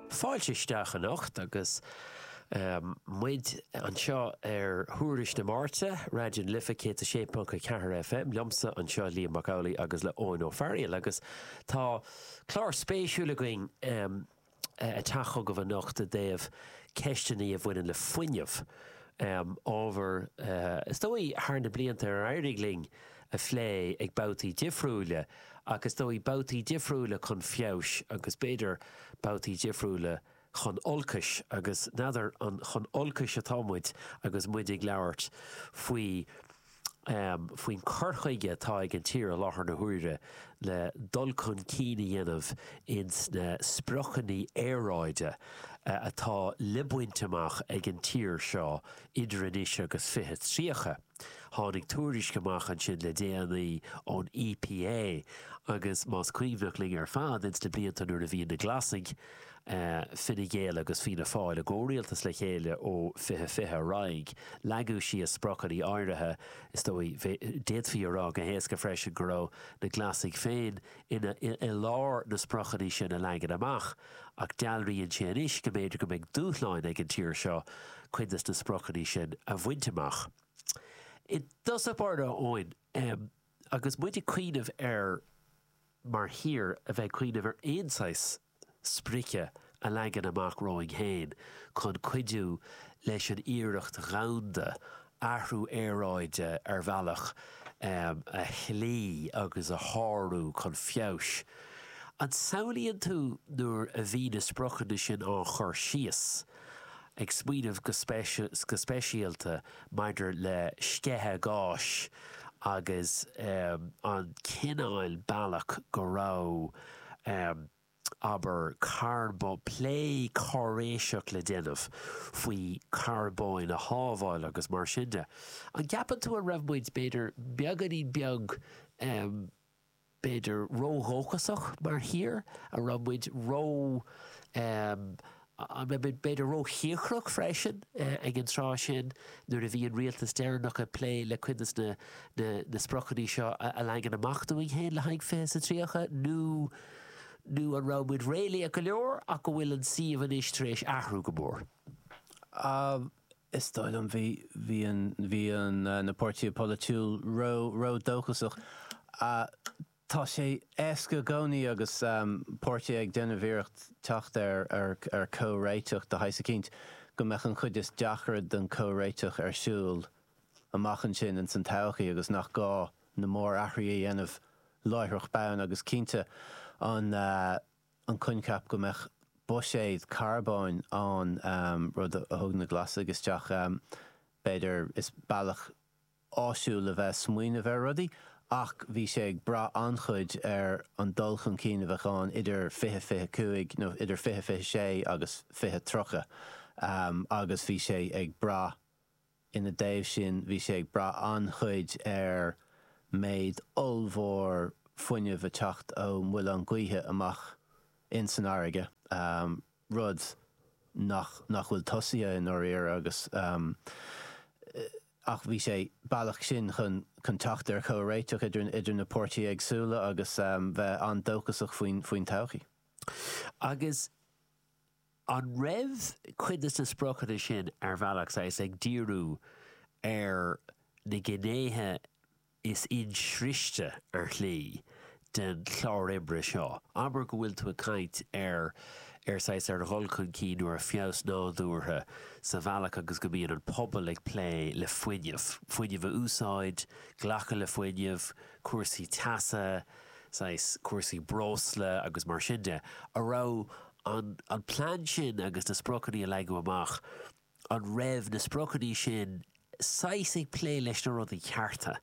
Fáilte isteach anocht agus muid anseo ar Thuairisc na Máirte, Raidió na Life 106.4 FM, liomsa anseo, Liam Mac Amhlaigh agus le Eoin Ó Fearaíl agus tá clár spéisiúil againn ag teacht chugaibh anocht i dtaobh ceisteanna a bhaineann le fuinneamh, ábhar is dóigh thar na blianta ar éirigh linn a phlé ag babhtaí difriúla ach is dóigh babhtaí difriúla chun feabhais agus b'fhéidir babhtaí difriúla chun olcais agus n'fheadar an chun olcais atá muid agus muid ag labhairt faoi faoin cur chuige atá ag an tír i láthair na huaire le dul chun cinn a dhéanamh ins na spriocanna aeráide atá le baint amach ag an tír seo idir anois agus 2030. Tháinig tuairisc amach ansin le déanaí ón EPA agus más cuimhneach linn ar fad ins na blianta nuair a bhí na Glasaigh, Fine Gael agus Fianna Fáil i gcomhrialtas le chéile ó 2020 ar aghaidh, leagadh síos spriocanna áirithe. Is dóigh, d'fhéadfaí a rá go héasca freisin go raibh na Glasaigh féin ina i lár na spriocanna sin a leagan amach, ach dealraíonn sé anois go mb'fhéidir go mbeidh dúshláin ag an tír seo cuid de na spriocanna sin a bhaint amach. I dtosach báire, a Eoin, agus muid ag cuimhneamh ar, mar thír, a bheith ag cuimhneamh ar aon saghas, sprice a leagan amach romhainn féin chun cuidiú leis an iarracht dhomhanda athrú aeráide ar bhealach a chloí agus a shárú chun feabhais. An samhlaíonn tú nuair a bhí na spriocanna sin á chur síos, ag smaoineamh go speisialta maidir le sceitheadh gáis agus an cineál bealach go raibh, abair, plé cáiréiseach le déanamh faoi charbón a shábháil agus mar sin de. An gceapann tú an raibh muid, b'fhéidir, beagáinín beag. b'fhéidir, ródhóchasach mar thír, an raibh muid ró, em, an raibh muid b'fhéidir róchíocrach freisin ag an tráth sin nuair a bhí an rialtas deireanach ag plé le cuid de na, na, na spriocanna seo a leagan amach dúinn féin le haghaidh fiche sa tríocha nó, nó an raibh muid réalaíoch go leor ach go bhfuil an suíomh anois tar éis athrú go mór. Em. is dóigh liom, bhí, bhí an, bhí an, na páirtithe polaitiúil ró, ródhóchasach. Tá sé éasca i gcónaí agus páirtithe ag déanamh iarracht teacht ar, ar, ar comhréiteach de shaghas eicínt, go mbeadh an chuid is deacra den comhréiteach ar siúl amach ansin ins an todhchaí agus nach gá na mórathruithe a dhéanamh láithreach bonn agus cinnte an, an coincheap go mbeadh buiséad carbóin ann, rud a thug na Glasaigh isteach, b'fhéidir. Is bealach áisiúil a bheith ag smaoineamh ar rudaí ach bhí sé ag brath an-chuid ar an dul chun cinn a bheadh ann idir 2025, nó idir 2026 agus 2030 agus bhí sé ag brath, Ina dtaobh sin, bhí sé ag brath an-chuid ar méid ollmhór fuinnimh ag teacht ó mhuilleáin ghaoithe amach in san fharraige, rud nach nach bhfuil tosaithe i ndáiríre agus ach bhí sé bealach sin chun chun teacht ar chomhréiteach idir idir na páirtithe éagsúla agus bheith an-dóchasach faoin faoin todhchaí. Agus. An raibh cuid de na spriocanna sin, ar bhealach, saghas, ag díriú ar na gnéithe is insriste, ar shlí, den chlár oibre seo? Abair go bhfuil tú ag caint ar, ar saghas, ar dhul chun cinn nó ar feabhas nádúrtha sa bhealach agus go mbíonn an pobal ag plé le fuinneamh, fuinneamh a úsáid, glacadh le fuinneamh, cúrsaí teasa, saghas, cúrsaí breosla agus mar sin de. A raibh. an an plean sin agus na spriocanna a leagadh amach, an raibh na spriocanna sin saghas ag plé leis na rudaí cearta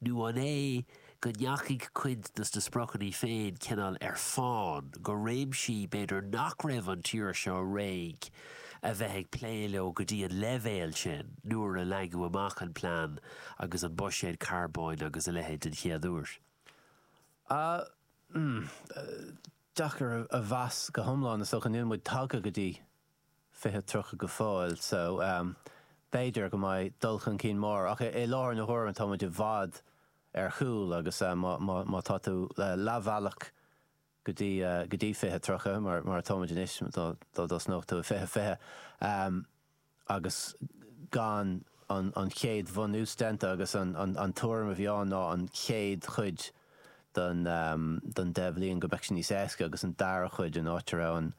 nó an é go ndeachaigh cuid dos na spriocanna féin cineál ar fán go réimsí b'fhéidir nach raibh an tír seo réidh a bheith ag plé leo go dtí an leibhéal sin nuair a leagadh amach an plean agus an buiséad carbóin agus a leithéid den chéad uair. deacair a mheas go hiomlán is dócha. Níl muid tagtha go dtí 2030 go fóill so b'fhéidir go mbeidh dul chun cinn mór ach i láthair na huaire tá muid i bhfad ar chúl agus má tá tú leathbhealach go dtí 2030 mar atáimid anois dá dtosnódh tú i 2020 agus gan an chéad bhunús déanta agus an tuairim a bhí ann ná an chéad chuid den deich bhliain go mbeadh sé níos éasca agus an dara cuid an áit a raibh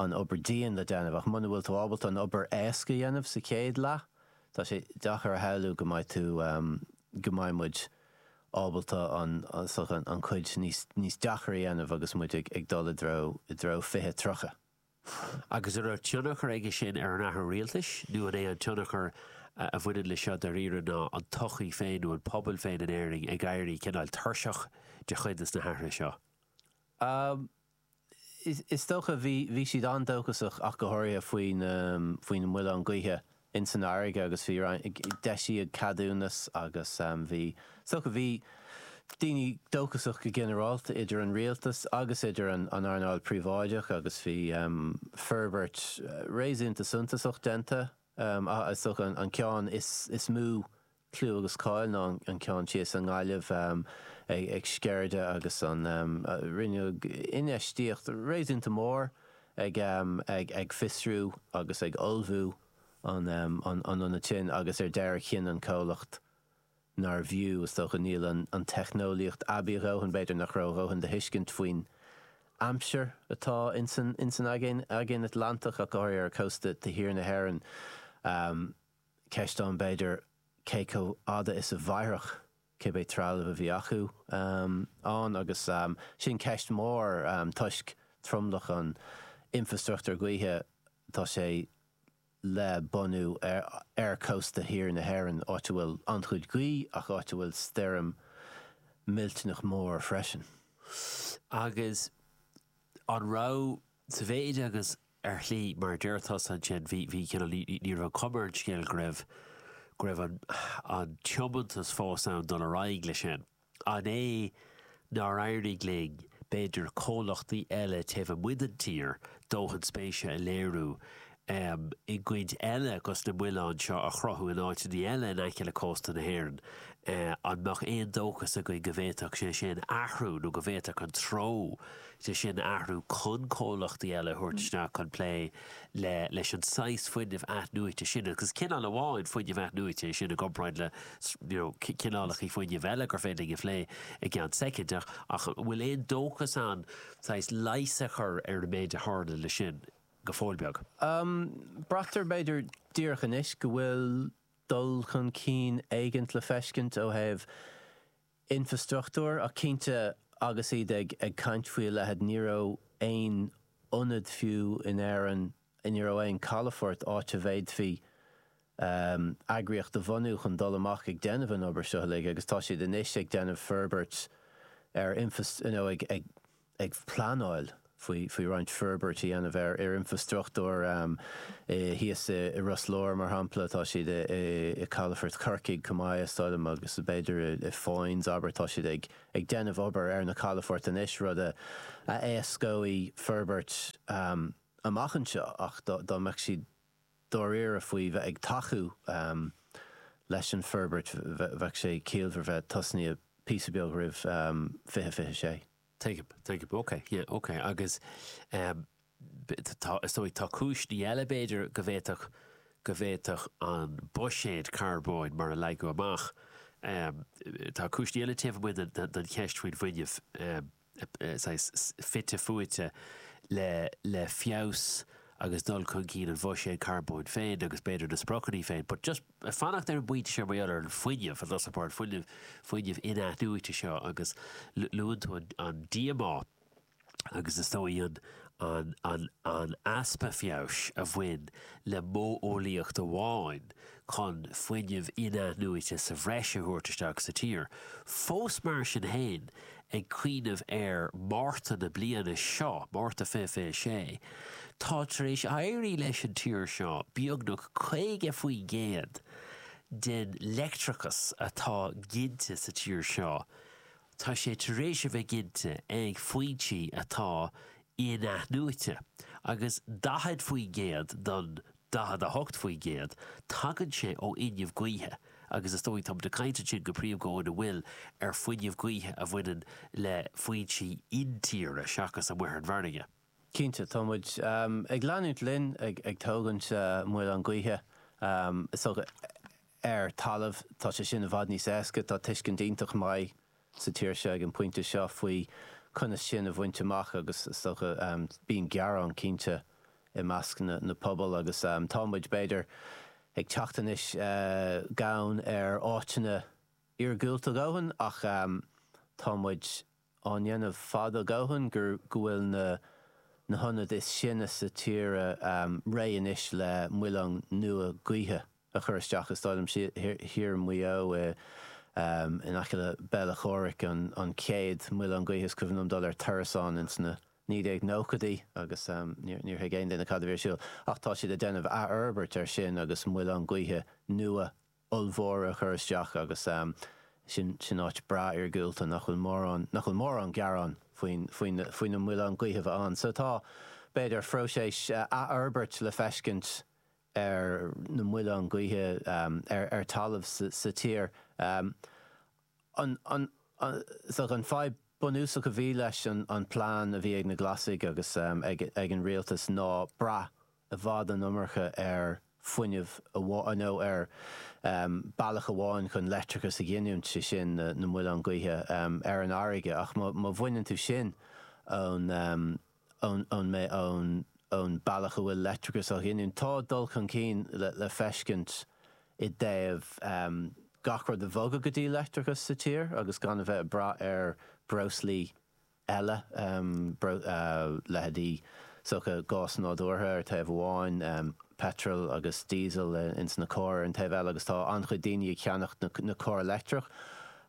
an obair dian le déanamh ach muna bhfuil tú ábalta an obair éasca a dhéanamh sa chéad leath tá sé deachair a shamhlú go mbeidh tú go mbeidh muid ábalta an cuid níos deachair a dhéanamh agus muid ag dul i dtreo 2030. agus a raibh tionchar aige sin ar an athrú rialtais, nó an é an tionchar a bhaineann leis seo dáiríre ná an tsochaí féin nó an pobal féin in Éirinn ag éirí cineál tuirseach de chuid de na hathruithe seo? Is dócha, bhí siad an-dóchasach ach go háirithe faoi na muilleáin ghaoithe ins an fharraige agus bhí roinnt d'eisíodh ceadúnas agus bhí so bhí daoine dóchasach go ginearálta idir an rialtas agus idir an an earnáil príobháideach agus bhí forbairt réasúnta suntasach déanta ach is dócha an ceann is mó clú agus cáil ná an ceann thíos i nGaillimh ag Sceirde agus an rinneadh infheistíocht réasúnta mór ag fiosrú agus ag ullmhú an ionaid sin agus ar deireadh chinn an comhlacht nárbh fhiú, is dócha, níl an teicneolaíocht aibí a dhóthain, b'fhéidir nach raibh a dhóthain de thuiscint faoin aimsir atá ins an Aigéan Atlantach ach go háirithe ar chósta thiar na hÉireann. Ceist ann, b'fhéidir, cé chomh fhada is a mhairfeadh cibé trealamh a bhí acu ann agus sin ceist mór toisc tromlach an infreastruchtúir gaoithe tá sé le bunú ar chósta thiar na hÉireann, áit a bhfuil an-chuid gaoth ach áit a bhfuil stoirm millteanach mór freisin. Agus an raibh, sa mhéid agus Ar shlí, mar a deir tusa ansin, bhí, bhí, you know, ní, ní raibh cuma ar an scéal go raibh, go raibh an, an tiomantas fós ann dul ar aghaidh leis sin. An é nár éirigh linn, b'fhéidir, comhlachtaí eile taobh amuigh den tír, dóthain spéise a léiriú, em, i gcuid eile agus na muilinn seo a chruthú in áiteannaí eile in aice le cósta na hÉireann, eh, an mbeadh aon dóchas againn go bhféadfadh sé sin athrú nó go bhféadfadh an treo sin athrú chun comhlachtaí eile a thabhairt isteach chun plé le leis an saghas fuinnimh athnuaite sin agus is cineál amháin fuinnimh athnuaite é sin i gcomparáid le you know cineálacha fuinnimh eile gur féidir linn a phlé i gceann soicind ach ach an bhfuil aon dóchas ann saghas leigheas a chur ar an méid a tharla leis sin go fóill beag? Braitear b'fhéidir díreach anois go bhfuil dul chun cinn éigin le feiscint ó thaobh infreastruchtúir, ach cinnte agus iad ag caint faoi a leithid ní raibh aon ionad fiú in Éirinn, ní raibh aon calafort áit a bhféadfaí eagraíocht a bhunú chun dul amach ag déanamh an obair seo uilig agus tá siad anois ag déanamh forbairt ar infreastruchtúr, you know, ag. ag pleanáil faoi roinnt forbairt a dhéanamh ar infreastruchtúr thíos i Ros Láir, mar shampla, tá siad i calafort Chorcaigh chomh maith, is dóigh liom, agus b'fhéidir i Foynes, abair, tá siad ag déanamh obair ar na calafoirt anois, rud a éascóidh forbairt amach anseo ach dá mbeadh siad. dáiríre faoi bheith ag tacú leis an bhforbairt bheadh sé ciallmhar bheith tosnaíthe píosa beag roimh 2026. Tuigim, tuigim, ok, yeah, ok agus tá, is dóigh, tá cúiseanna eile b'fhéidir go bhféadfadh, go bhféadfadh an buiséad carbóin mar a leagadh amach, tá cúiseanna eile taobh amuigh den cheist faoin bhfuinneamh. saghas fite fuaite le le feabhas agus dul chun cinn an bhuiséid charbóin féin agus b'fhéidir na spriocanna féin but just fanacht ar an bpointe seo mar gheall ar an fuinneamh an háirithe fuinneamh fuinneamh in-athnuaite seo agus luann tú an an díomá agus is dóigh an an an an easpa feabhais a bhain le modheolaíocht amháin chun fuinneamh in-athnuaite sa bhreis a thabhairt isteach sa tír fós mar sin féin ag cuimhneamh ar Mhárta na bliana seo, Márta 2026, tá tar éis éirí leis an tír seo beagnach 50% den leictreachas atá ginte sa tír seo, tá sé tar éis a bheith ginte ag foinsí atá in-athnuaite, agus 40% den. 48%, tagann sé ó fhuinneamh gaoithe agus is dóigh, tá muid ag caint ansin go príomha go fóill ar fuinneamh gaoithe a bhaineann le foinsí intíre seachas amuigh ar an bhfarraige. Cinnte, tá muid ag leanúint linn ag ag tógaint muileann gaoithe, is dócha, ar talamh, tá sé sin i bhfad níos éasca, tá tuiscint an-mhaith sa tír seo ag an bpointe seo faoi conas sin a bhaint amach agus is dócha bíonn gearán cinnte i measc na pobal agus tá muid b'fhéidir ag teacht anois gann ar áiteanna iargúlta a dhóthain ach tá muid á ndéanamh fada a dhóthain go bhfuil na na hionaid is sine sa tíre réidh anois le muileann nua gaoithe. a chur isteach is táid ansin thiar i Maigh Eo in aice le Béal Átha Chomhraic, an chéad mhuileann gaoithe, is cuimhin liom dul ar turas ann ins na 1990idí agus níor thuig aon duine cad a bhí ar siúl. Ach tá siad ag déanamh athfhorbairt air sin agus muileann gaoithe nua ollmhóra a chur isteach agus sin áit breá iargúlta nach bhfuil mórán, nach bhfuil mórán gearán faoin, faoi na muileann gaoithe bheith ann. So tá, b'fhéidir, próiseas athfhorbairt le feiscint ar na muileann gaoithe ar talamh sa tír. So an fadhb bunúsach a bhí leis an plean a bhí ag na Glasaigh agus ag an rialtas ná brath i bhfad an iomarca ar fuinneamh amháin nó ar bealach amháin chun leictreachas a ghiniúint, sé sin na muileann gaoithe ar an fharraige. Ach má bhaineann tú sin ón. ón mbealach ón bealach a bhfuil leictreachas á ghiniúint. Tá dul chun cinn le feiscint i dtaobh gach rud a bhogadh go dtí leictreachas sa tír agus gan a bheith ag brath ar breoslaí eile, leithéidí gás nádúrtha ar thaobh amháin, peitreal agus díosal ins na cairr ar an taobh eile agus tá an-chuid daoine ag ceannacht na cairr leictreach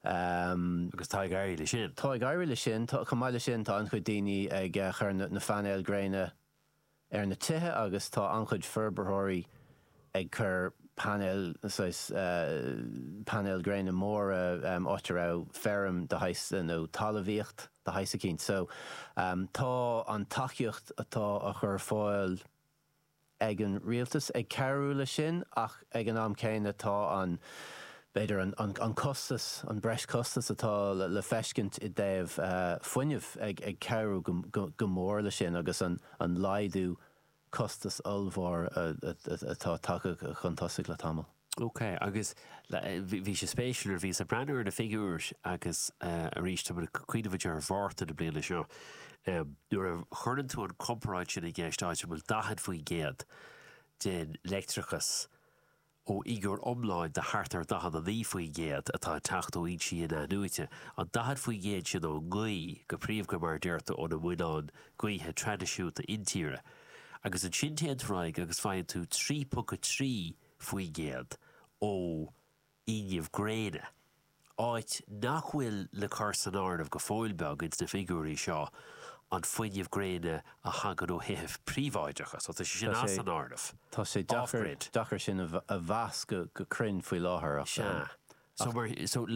Agus tá ag éirí leis sin. Chomh maith leis sin, tá an-chuid daoine ag cur na painéil gréine ar na tithe agus tá an-chuid forbarthóirí ag cur painéil, saghas painéil gréine móra áit a raibh feirm de shaghas nó talamhaíocht de shaghas eicínt. So tá an tacaíocht atá á chur ar fáil, ag an Rialtas ag cabhrú leis sin ach ag an am céanna tá an, b'fhéidir, an costas, an breis costas atá le feiscint i dtaobh fuinnimh ag cabhrú go mór leis sin agus an laghdú costais ollmhór atá tagtha chun tosaigh le tamall. Ok, agus bhí sé spéisiúil nuair a bhíos ag breathnú ar na figiúir agus arís tá muid ag cuimhneamh ar Mhárta na bliana seo nuair a chuireann tú an chomparáid sin i gceist áit a bhfuil 40% den leictreachas ó fhigiúr iomláin de thart ar 49% atá ag teacht ó fhoinsí inathnuaite, an 40% sin ón ngaoth go príomha mar a deir tú ó na muileáin gaoithe traidisiúnta intíre agus ansin téann tú ar aghaidh agus faigheann tú 3.3 faoin gcéad ó fhuinneamh gréine, áit nach bhfuil le cur san áireamh go fóill beag ins na figiúirí seo an fuinneamh gréine a thagann ó thithe príobháideacha, so tá sé sin as an áireamh. Tá sé an-deacair sin a mheas go cruinn faoi láthair ach. Sea. So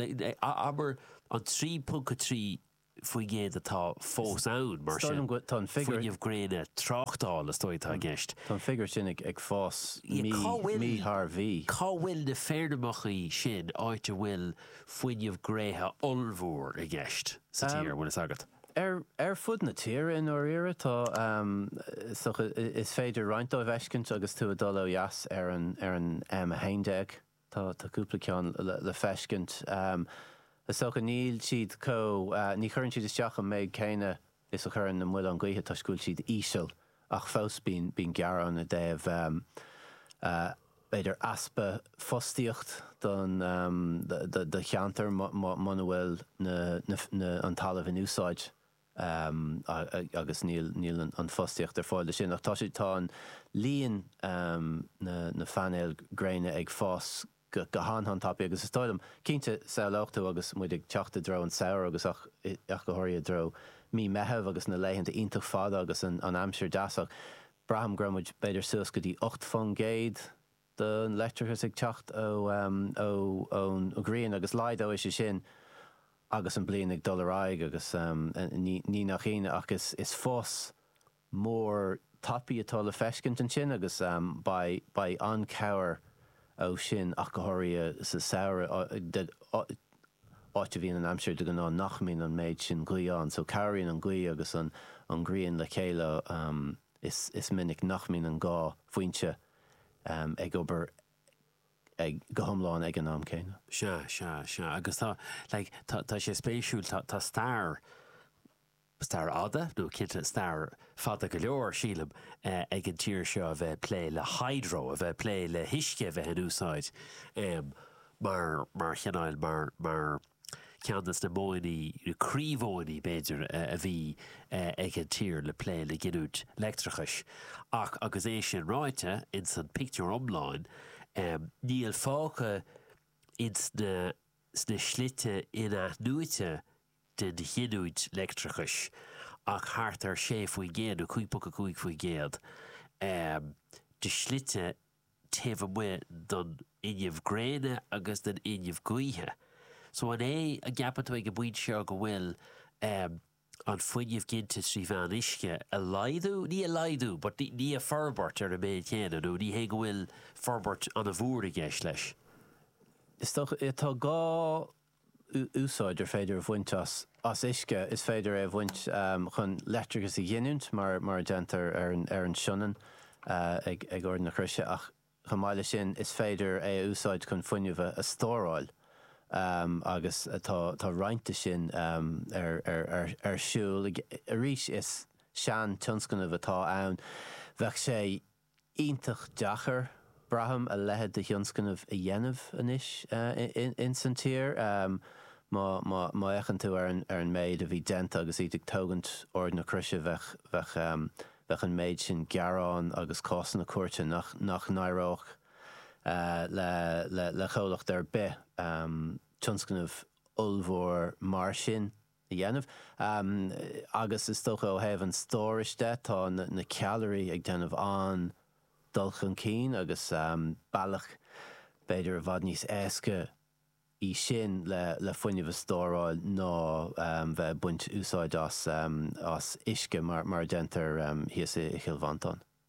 abair an 3.3 faoin gcéad atá fós ann, mar sin, fuinneamh gréine tráchtála, is dóigh, atá i gceist. Tá an figiúr sin ag fás mí thar mhí. Cá bhfuil na feirmeacha sin áit a bhfuil fuinneamh gréine ollmhór i gceist sa tír, an bhfuil fhios agat? Ar fud na tíre i ndáiríre, tá, is féidir roinnt díobh a fheiscint agus tú ag dul ó dheas ar ar an M11. Tá tá cúpla ceann le feiscint. Is dócha níl siad chomh, ní chuireann siad isteach an méid céanna is a chuireann na muileáin gaoithe toisc go bhfuil siad íseal ach fós bíonn gearán i dtaobh b'fhéidir easpa fostaíocht don don cheantar muna bhfuil an talamh in úsáid. agus níl an fostaíocht ar fáil leis sin ach tá sé tá an líon na phainéal gréine ag fás go han an-tapaidh agus is dóigh liom cinnte samhlófá agus muid ag teacht i dtreo an samhradh agus ach ach go háirithe i dtreo mí Meitheamh agus na laethanta iontach fada agus an an aimsir deas ach braithim go raibh muid b'fhéidir suas go dtí 8 faoin gcéad don leictreachas ag teacht ón ghrian agus laghdóidh sé sin agus an bliain ag dul ar aghaidh agus ní nach ionadh ach is fás mór tapaidh atá le feiscint ansin agus beidh an-cabhair ó sin ach go háirithe sa samhradh áit a bhíonn an aimsir de ghnáth nach mbíonn an méid sin gaoth ann so cabhraíonn an gaoth agus an ghrian le chéile is minic nach mbíonn an dhá foinse ag obair ag go hiomlán ag an am céanna. Sea, sea, sea. Agus tá, like, tá, tá sé spéisiúil, tá, tá stair, stair fhada, nó cinnte stair fada go leor, sílim, ag an tír seo a bheith ag plé le hydro, a bheith ag plé le huisce a bheith in úsáid mar, mar chineál, mar, mar, ceann de na modhanna, na croímhodhanna b'fhéidir, a bhí ag an tír le plé le giniúint leictreachais. Ach agus é sin ráite, ins an pictiúr iomlán, níl fágtha ins na sna slite in-athnuaite den ghiniúint leictreachais ach thart ar 6 faoin gcéad, nó 5.5 faoin gcéad, de shlite taobh amuigh den fhuinneamh gréine agus den fhuinneamh gaoithe. So an é an gceapann tú ag an bpointe seo go bhfuil ehm an fuinneamh ginte trí mheán uisce ag laghdú, ní ag laghdú but ní ag forbairt ar an méid chéanna nó ní hé go bhfuil forbairt an-mhór i gceist leis? Is dócha, tá gá úsáid ar féidir a bhaint as uisce is féidir é a bhaint chun leictreachas a ghiniúint, mar a déantar ar an Sionainn ag Ard na Croise, ach chomh maith leis sin is féidir é a úsáid chun fuinneamh a stóráil agus tá roinnt de sin ar siúl. Arís is sean-tionscnamh atá ann. Bheadh sé. iontach deacair, braithim, a leithéid de thionscnamh a dhéanamh anois ins an tír. Má fhéachann tú ar an méid a bhí déanta agus iad ag tógaint Ard na Croise, bheadh an méid sin gearán agus cásanna cúirte nach n-éireodh le comhlacht ar bith tionscnamh ollmhór mar sin. a dhéanamh agus is dócha ó thaobh an stórais de tá na ceallraí ag déanamh an-dul chun cinn agus bealach b'fhéidir i bhfad níos éasca í sin le fuinneamh a stóráil ná bheith ag baint úsáid as uisce mar a déantar thíos i gCill Mhantáin.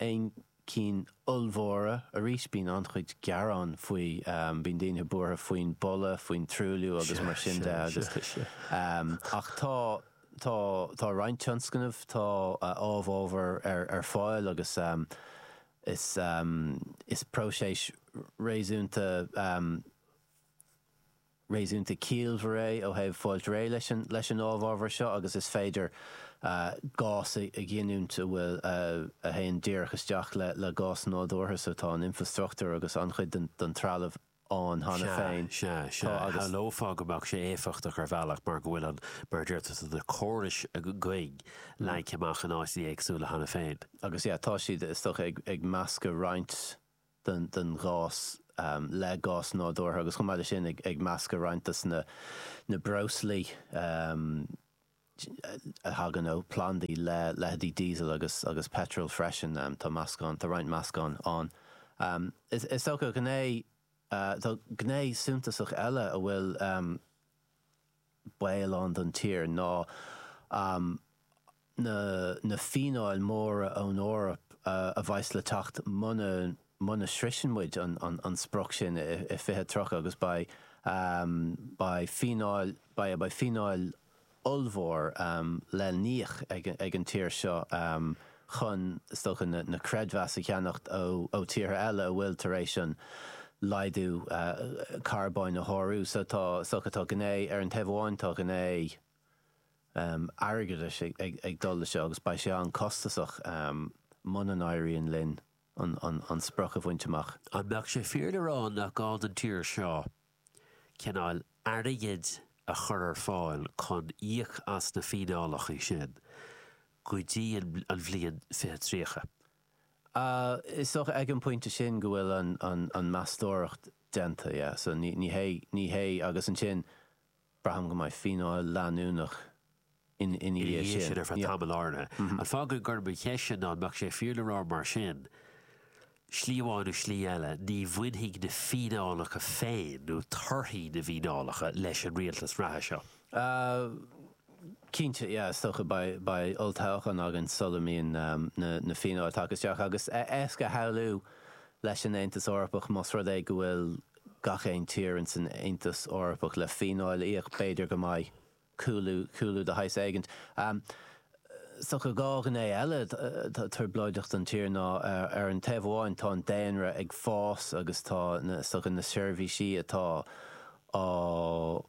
aon cinn ollmhóra. Arís, bíonn an-chuid gearán faoi, bíonn daoine buartha faoin boladh, faoin truailliú agus mar sin de agus, ach tá, tá, tá roinnt tionscnamh, tá amhábhar ar fáil agus is, is próiseas réasúnta. réasúnta ciallmhar é ó thaobh fáilt réidh leis an ábhar seo agus is féidir gás a ghiniúint a bhfuil a théann díreach isteach le gás nádúrtha so tá an infreastruchtúr agus an-chuid den trealamh ann cheana Sea, féin. sea, sea. Tá agus. Shamhlófá go mbeadh sé éifeachtach ar bhealach mar go bhfuil an, mar a dúirt tusa, na córais againn leagtha amach in áiteanna éagsúla cheana féin. Agus yeah tá siad, is dócha, ag meascadh roinnt. den ghás, le gás nádúrtha, agus chomh maith leis sin ag meascadh roinnt de na breoslaí a thagann ó phlandaí le leitheidí Diesel agus Petrol freisin. Tá meascán, tá roinnt meascán ann. Is dócha, gné, tá gné suntasach eile a bhfuil. baol ann don tír ná na fíneáil mhóra ón Eoraip a bheas le teacht muna sroicheann muid an sprioc sin i 2030 agus beidh fíneáil ollmhór le híoc ag an tír seo chun is dócha na creidmheas a cheannacht ó tíortha eile a bhfuil tar éis an laghdú carbóin a shárú. So tá is dócha, tá gné, ar an taobh amháin tá gné airgeadais ag dul leis seo agus beidh sé an-costasach muna n-éiríonn linn an sprioc a bhaint amach. An mbeadh sé fíor le rá nach gá don tír seo cineál airgid a chur ar fáil chun íoc as na fíneálacha sin go dtí an bhliain fiche tríocha. Is dócha ag an bpointe sin go bhfuil an meastóireacht déanta, yeah, so ní hé, ní hé, agus ansin Braithim go mbeidh fíneáil leanúnach ina dhiaidh sin ar feadh tamaill áirithe. An fágann gurb í mo cheist ná an mbeadh sé fíor le rá mar sin, slí amháin nó slí eile, ní bhainfidh na fíneálacha féin nó torthaí na bhfíneálacha leis an rialtas reatha seo? Cinnte, yeah, is dócha, beidh olltoghchán againn sula mbíonn na fíneáil tagtha isteach agus is éasca a shamhlú leis an Aontas Eorpach más rud é go bhfuil gach aon tír ins an Aontas Eorpach le fíneáil a íoc, b'fhéidir go mbeidh cúlú, cúlú de shaghas éigint, ann. Is dócha dhá ghné eile de thrioblóideacht an tír ná, ar an taobh amháin, tá an daonra ag fás agus tá na, is dócha na seirbhísí atá á,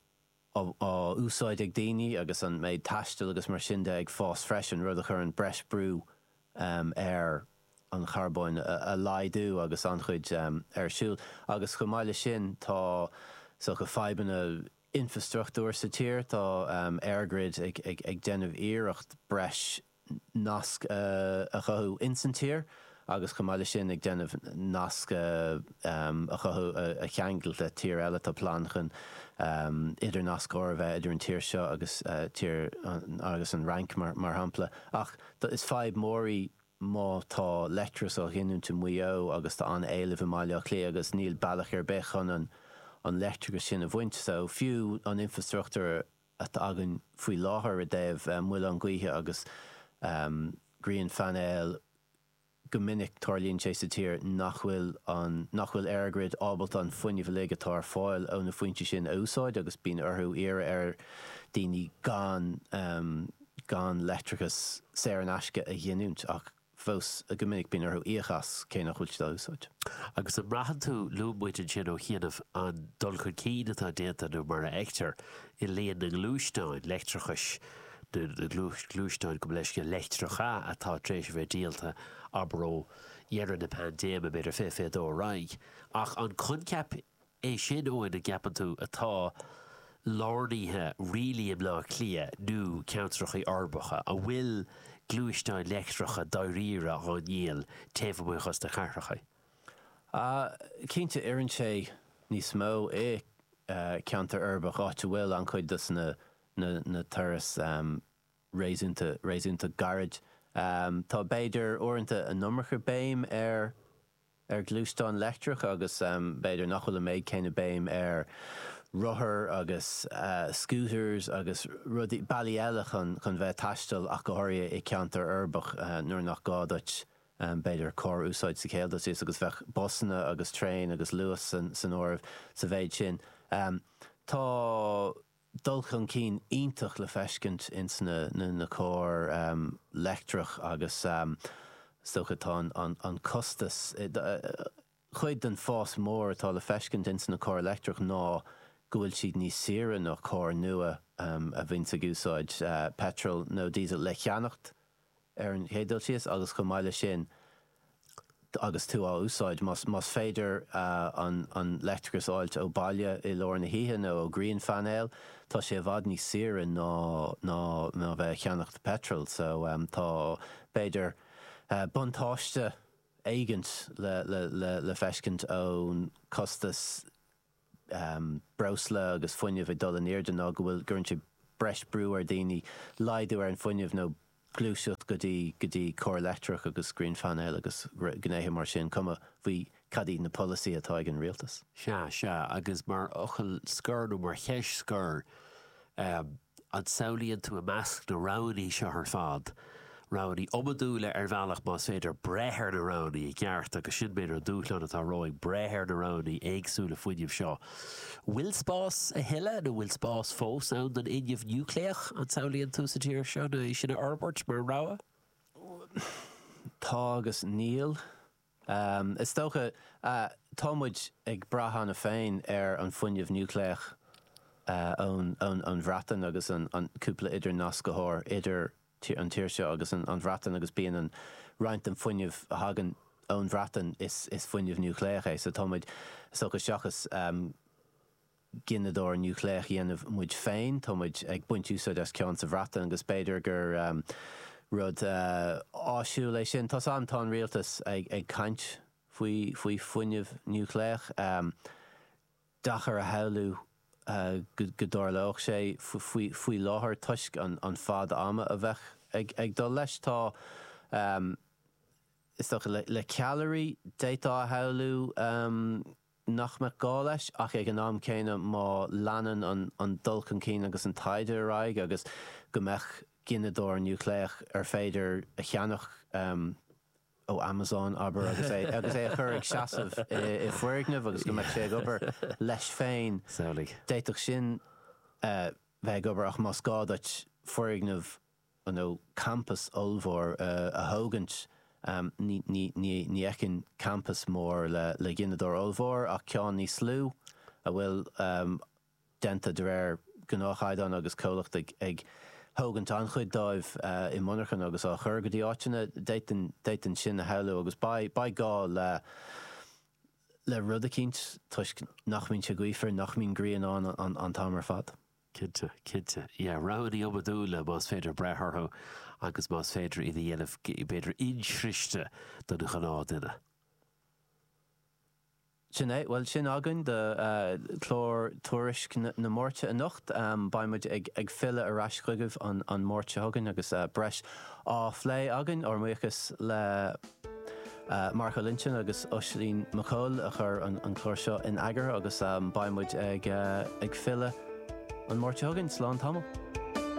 á úsáid ag daoine agus an méid taistil agus mar sin de ag fás freisin, rud a chuireann breis brú ar an charbóin a laghdú agus an-chuid ar siúl. Agus chomh maith leis sin, tá is dócha fadhbanna infreastruchtúir sa tír, tá EirGrid ag déanamh iarracht breis nasc a chothú ins an tír agus chomh maith le sin ag déanamh nasc a chothú a cheangal le tír eile. Tá plean chun idirnasc úr a bheith idir an tír seo agus tír agus an Fhrainc mar shampla. Ach is fadhb mór í má tá leictreachas á ghiniúint i Maigh Eo agus tá an éileamh i mBaile Átha Cliath agus níl bealach ar bith chun an leictreachas sin a bhaint. So fiú an infrastruchtúr atá againn faoi láthair i dtaobh muileann gaoithe agus grianphainéil, go minic tarlaíonn sé sa tír nach bhfuil an, nach bhfuil EirGrid ábalta an fuinneamh uilig atá ar fáil ó na foinse sin a úsáid agus bíonn orthu iarraidh ar daoine gan, gan leictreachas saor in aisce a ghiniúint ach. fós go minic bíonn orthu íoc as cé nach bhfuil siad á úsáid. Agus an mbraitheann tú, luaigh muid ansin ó chianaibh, an dul chun cinn atá déanta nó mar a fheictear i líon na ngluaisteáin leictreachais nó na gluaisteáin, gabh mo leithscéal, leictreacha atá tar éis a bheith díolta, abair ó dheireadh na paindéime, b'fhéidir, fiche, fiche dó ar aghaidh. Ach an coincheap É sin Eoin an gceapann tú atá lárnaithe really i mBleá Cliath nó ceantracha uirbeacha an bhfuil gluaisteáin leictreacha dáiríre á ndíol taobh amuigh dos na cathracha? Cinnte, oireann sé níos mó i ceantar uirbeach, áit a bhfuil an-chuid dos na turais réasúnta gairid. Tá b'fhéidir uaireanta an iomarca béim ar ar ghluaisteáin leictreacha agus b'fhéidir nach bhfuil an méid céanna béim ar rothair agus scooters agus rudaí, bealaí eile chun bheith ag taisteal ach go háirithe i gceantar uirbeach nuair nach gá duit b'fhéidir carr a úsáid sa chéad dul síos agus bheadh busanna agus traein agus Luas san áireamh sa mhéid sin. Tá. dul chun cinn iontach le feiscint ins na cairr leictreach agus is dócha tá an costas, cuid den fás mór atá le feiscint ins na cairr leictreach ná go bhfuil siad níos saoire ná cairr nua a bhíonns ag úsáid peitreal nó diesel le cheannacht. ar an chéad dul síos, agus chomh maith leis sin, agus tú á úsáid, más féidir an leictreachas a fháilt ó bhaile i lár na hoíche nó ó ghrianphainéal, tá sé i bhfad níos saoire ná a bheith ag ceannacht peitril. So, tá, b'fhéidir, buntáiste éigint le feiscint ón costas. breosla agus fuinneamh ag dul in airde nó go bhfuil, gcuireann sé breis brú ar daoine laghdú ar an fuinneamh nó gluaiseacht go dtí go dtí cairr leictreach agus grianphainéil agus gnéithe mar sin, cuma faoi cad iad na polasaithe atá ag an rialtas. Sea, sea, agus mar fhocal scoir nó mar cheist scoir, An samhlaíonn tú i measc na roghanna seo ar fad roghanna iomadúla ar bhealach más féidir breith ar na roghanna i gceart agus sin b'fhéidir an dúshlán atá romhainn, breith ar na roghanna éagsúla fuinnimh seo. Bhfuil spás a thuilleadh nó bhfuil spás fós ann don fhuinneamh núicléach, an samhlaíonn tú, sa tír seo nó é sin a fhorbairt mar rogha? Tá agus níl. Is dócha, tá muid ag brath cheana féin ar an bhfuinneamh núicléach ón Bhreatain agus an cúpla idirnascthóir idir an tír seo agus an Bhreatain agus bíonn an roinnt den fuinneamh a thagann ón Bhreatain is fuinneamh núicléach é so tá muid is dócha seachas gineadóir núicléach dhéanamh muid féin. Tá muid ag baint úsáid as ceann sa Bhreatain agus b'fhéidir gur rud áisiúil é sin. Tá's a'm, tá an rialtas ag caint faoi faoi fuinneamh núicléach. Deacair a shamhlú go dtarlódh sé faoi faoi láthair toisc an fad ama a bheadh ag dul leis. Tá is dócha le ceallairí d'fhéadfá a shamhlú. nach mbeadh gá leis, ach ag an am céanna má leanann an dul chun cinn agus an taighde ar aghaidh agus go mbeadh gineadóir núicléach ar féidir a cheannach ó Amazon, abair, agus é a chur ag seasamh i bhfoirgneamh agus go mbeadh sé ag obair leis féin, d'fhéadfadh sin bheith ag obair ach más gá duit foirgneamh nó campas ollmhór a thógaint, ní fheicim campas mór le gineadóir ollmhór ach ceann níos lú a bhfuil déanta de réir gnáthchaighdeán agus comhlacht ag thógaint an-chuid dóibh i monarchan agus á chur go dtí áiteanna. D'fhéadfainn sin a shamhlú agus beidh gá le le rud eicínt toisc nach mbíonn sé gaofar, nach mbíonn grian ann an t-am ar fad. Cinnte, cinnte. Yeah, roghanna iomadúla más féidir breith orthu agus más féidir iad a dhéanamh b'fhéidir insroichte don ghnáthdhuine. Sin é. Bhuel, sin againn do clár Tuairisc na Máirte anocht. Beidh muid ag filleadh ar ais chugaibh an Máirt seo chugainn agus breis á phlé againn. Ár mbuíochas le Marco Linton agus Oisín Mac Cóil a chuir an clár seo in eagar agus beidh muid ag filleadh an Mháirt seo chugainn. Slán tamall.